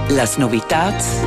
Las novitads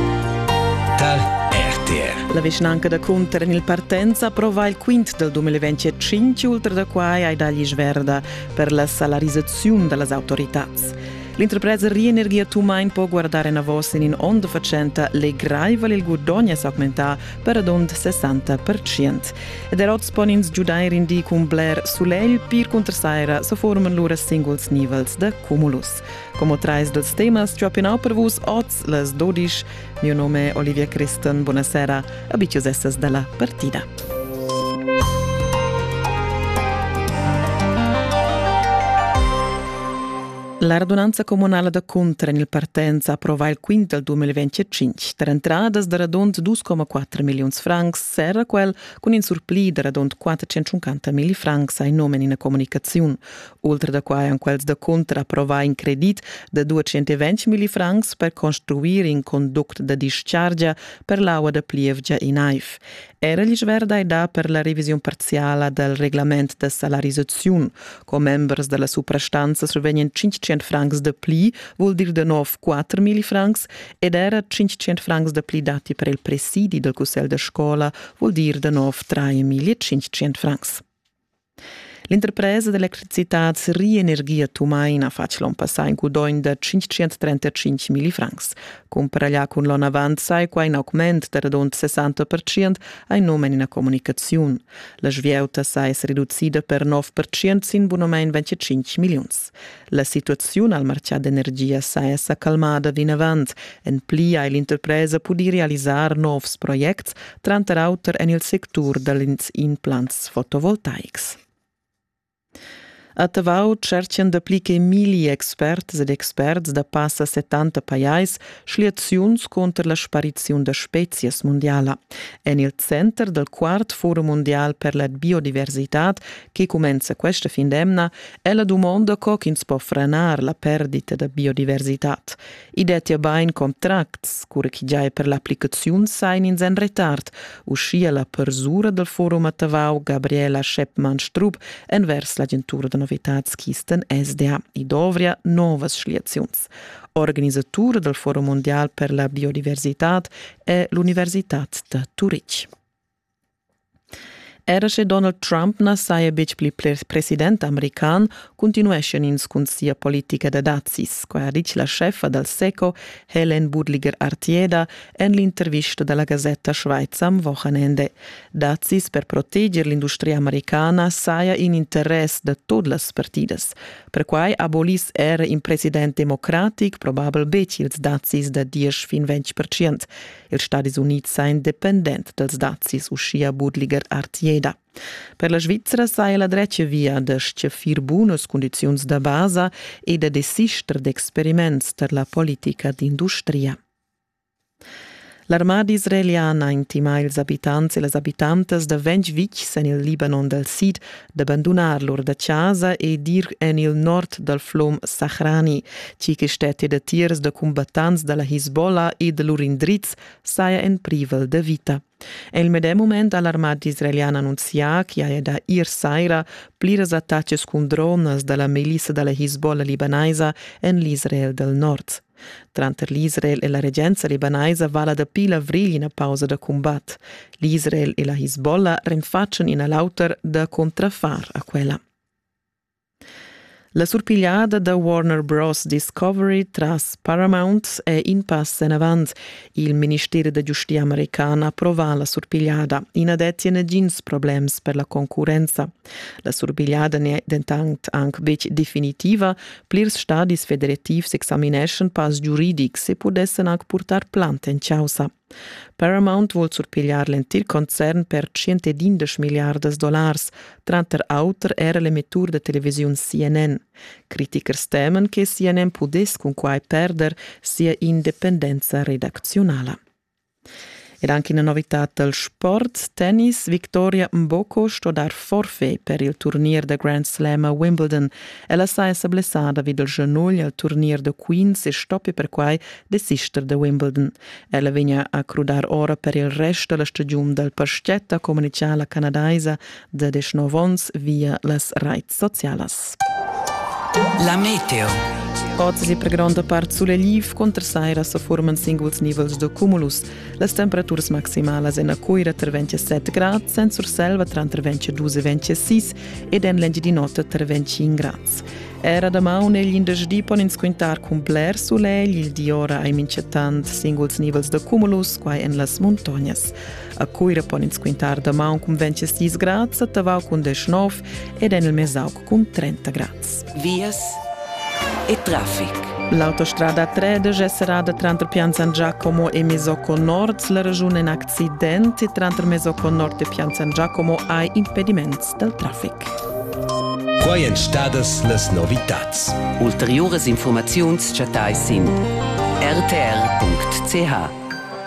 dal RTR. La vischnanca da Cunter en il partenza prova il quint del 2025 ultra da quai ai dagli sverda per la salarizzaziun da las autoritats. L'interpresa Rienergia Tumain po guardar enavos in in onn da facenta legraivel il guadogn es augmentà per adond 60%. Ed er oz pon ins giudair in di cun bler sulegl, pir cunter saira se forman lura singuls nivels da cumulus. Como trais dels temas giopinau per vus oz les dodisch. Mio nome è Olivia Christen, buonasera, abitius essas dalla partida. La radunanza comunale da Cuntra in il partenza approvà il quint del 2025. Per entradas da radund 2,4 milions francs serra quel cun in surplì da radund 450 mil francs ai nomen in comunicaziun. Ultra da quai han quels da cunter approvà in credit da 220 millifrancs per construir in conduct da dischargia per l'aua da plievgia in Aif. Era l'isch verda è dà per la revisiun parziala dal reglament da salarisaziun. Commembers da la suprastanza survegnan 500 francs da pli, vul dir da nov 4 millifrancs, ed era 500 francs da pli dati per il presidi dal cussegl da scola, vul dir da nov 3.500 francs. L'interpresa d'electricitad Rienergie Tumaina ha fatg l'onn passà in gudogn da 535 millifrancs. Cumparà cun l'onn avant sai qua in augment da radund 60% ein num en ina communicaziun. La svieuta sai es reducida per 9% sin bunamein 25 milliuns. La situaziun al martgà d'energia saja sa calmada vinavant. En pli ha l'interpresa pudì realisar novs projects, tranter auter en il sectur dals implants fotovoltaics. A Tavau tscherchan dapli che milli experts ed experts da passa 70 pajais schliaziuns cunter la spariziun da spezias mundiala. En il center dal quart forum mundial per la biodiversitad, che cumenza questa fin d'emna, Ella dumonda co ch'ins po franar la perdita da biodiversitad. I dettia bain contracts, cura che giai per l'applicaziun sain ins en retard, uschia la persura dal forum a Tavau, Gabriela Scheppmann-Strupp, envers l'agentura da novitads Kisten SDA. I dovria novas schliaziuns. Organisatura dal Forum mondial per la biodiversitad è l'Universitad da Turitg. Era sche Donald Trump na saja betg pli president american, cuntinueschian ins cun sia politica da dazis, quai ha ditg la scheffa dal SECO Helen Budliger-Artieda en l'intervista da la gasetta Schweizer am Wochenende. Dazis per proteger l'industria americana saja in interess da tut las partidas. Perquai aboliss era in president democratic probabel betg ils dazis da diesch fin ventg percent. ils Stadis Unids sa independent dals dazis, uschia Budliger Artieda. Per la Svizra saja la dretga via da stgaffir bunas cundiziuns da basa e da desister d'experiments tar la politica d'industria. L'armada israeliana intima ils abitants e las abitantas da ventg vitgs en il Libanon dal sid da bandunar lur da chasa e dir en il nord dal flum Sahrani, tgi che stetti datiers da combattants da la Hisbollah e da lur indriz saja en privel da vita. En il medem moment ha l'armata israeliana annunzià che haja da ir saira pliras attacas cun dronas da la milissa da la Hisbollah libanaisa en l'Israel del Nord. Tranter l'Israel e la regenza libanaisa vala dapi l'avrigl ina pausa da cumbat. L'Israel e la Hisbollah renfatschan in a l'auter da contrafar a quella. La surpigliada da Warner Bros. Discovery tras Paramount è in pass en avant. Il minister da giustia american approva la surpigliada. I na dettia negins problems per la concurrenza. La surpigliada n'è dentant anc betg definitiva. Plirs stadis federativs examineschan pass giuridics e pudessan anc purtar plant en chaussa. Paramount vul surpigliar l'entir concern per 110 milliardas dollars, tranter auter era l'emettur da televisiun CNN. Critichers temen che CNN pudess cunquai perder sia independenza redacziunala. Ed anche una novità dal sport, tennis. Victoria Mboko sto dar forfait per il turnier da Grand Slam a Wimbledon. Ella saja blessada vid il genugl al turnier da Queens e stoppi perquai desister da Wimbledon. Ella vegna a crudar ora per il rest da la stagiun dal paschetta, communicha la canadaisa da deschnov onns via las raits socialas. La meteo. Ozzi per gronda part suleliv contra saira se forman singuls nivels de cumulus. Las temperaturas maximalas en a Coira tra 27 grad, Saint Surselva tra 22 e 26 ed en l'Engiadinota tra 25 grad. Era da maun e l'indersdi pon ins quintar cun bler solegl, il di ora ai mincetant singuls nivels de cumulus, quai en las montagnas. A Cuira pon ins quintar damaun cun 26 grads, a Tavau cun 19 ed en il Mesauc cun 30 grads. Vias e traffic. L'autostrada 13 è serrada tranter Pianzan Giacomo e Mesocco Nord. La regiun in accident e tranter Mesocco Nord e Pianzan Giacomo hai impediments dal traffic. Quai èn stadas las novitads. Ulteriuras informaziuns chattai sin rtr.ch.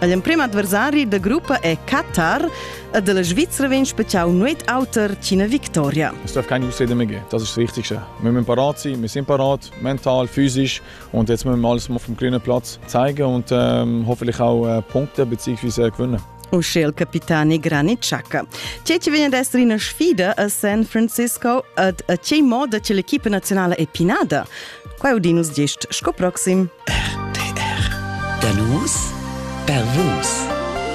L'emprim adversari da gruppa è Katar e della Svizra vegn speziau nuet auter ch'ina victoria. Es darf keine Ausrede mehr geben. Das ist das Wichtigste. Wir müssen parat sein, wir sind parat, mental, physisch und jetzt müssen wir alles auf dem grünen Platz zeigen und ähm, hoffentlich auch äh, Punkte bzw. gewinnen. uschel capitani Granit Xhaka. Tgei che vegn ad essere ina sfida a San Francisco ed a tgei moda che l'equipa nazionale è pinada? Quai udinus gest sco proxim. RTR. Da nus per vus.